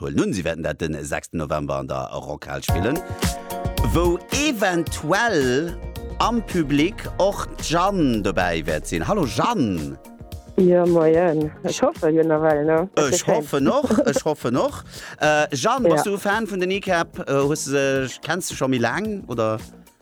huelen un si wäerten dat den sechsten November an der Rockhal spillen, wou eventuell am Public och d'Jeanne dobäi wäert sinn. Hallo Jeanne! Jo moien, ech hoffe jo nawell no. Ech hoffen och, ech hoffen och. Jeanne, bass du e Fan vun den Kneecap? Hues de se, kenns de scho méi laang oder?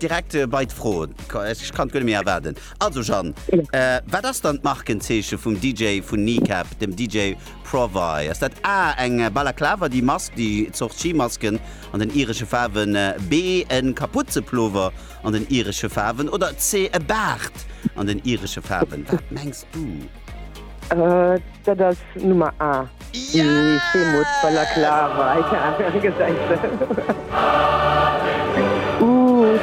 Direkt bei d'Froen, ech kann et guer net méi erwaarden. Also Jeanne, wat ass dann d'Markenzeeche vum DJ vun Kneecap, dem DJ Provy? Ass dat A, eng Balaklava, déi Mask, déi Zort Skimasken an den iresche Faarwen, B, e Kapuze-Plover an den iresche Faarwen oder C, e Baart an den iresche Faarwen? Wat mengs du? Äh, dat ass Nummer A. Ja! Déi Schweemoos Balaklava, ja, gesäit se. Uuhh.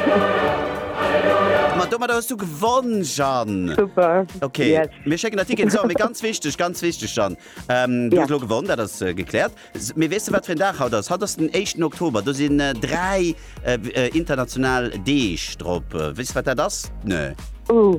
Ma domadder hues du gewonn, Jeanne! Super! Ok, Yes! mir schécken der Ticketen. So, mee ganz wichteg, ganz wichteg, Jeanne, ähm, du hues Ja. elo gewonn, dat ass äh, gekläert. S, Mee weess de, wat fir en Dag haut ass? Haut ass den éischten Oktober, do sinn äh, dräi äh, w- äh, international Deeg drop. Äh, Weess de, wat dat ass? Nö. Uh,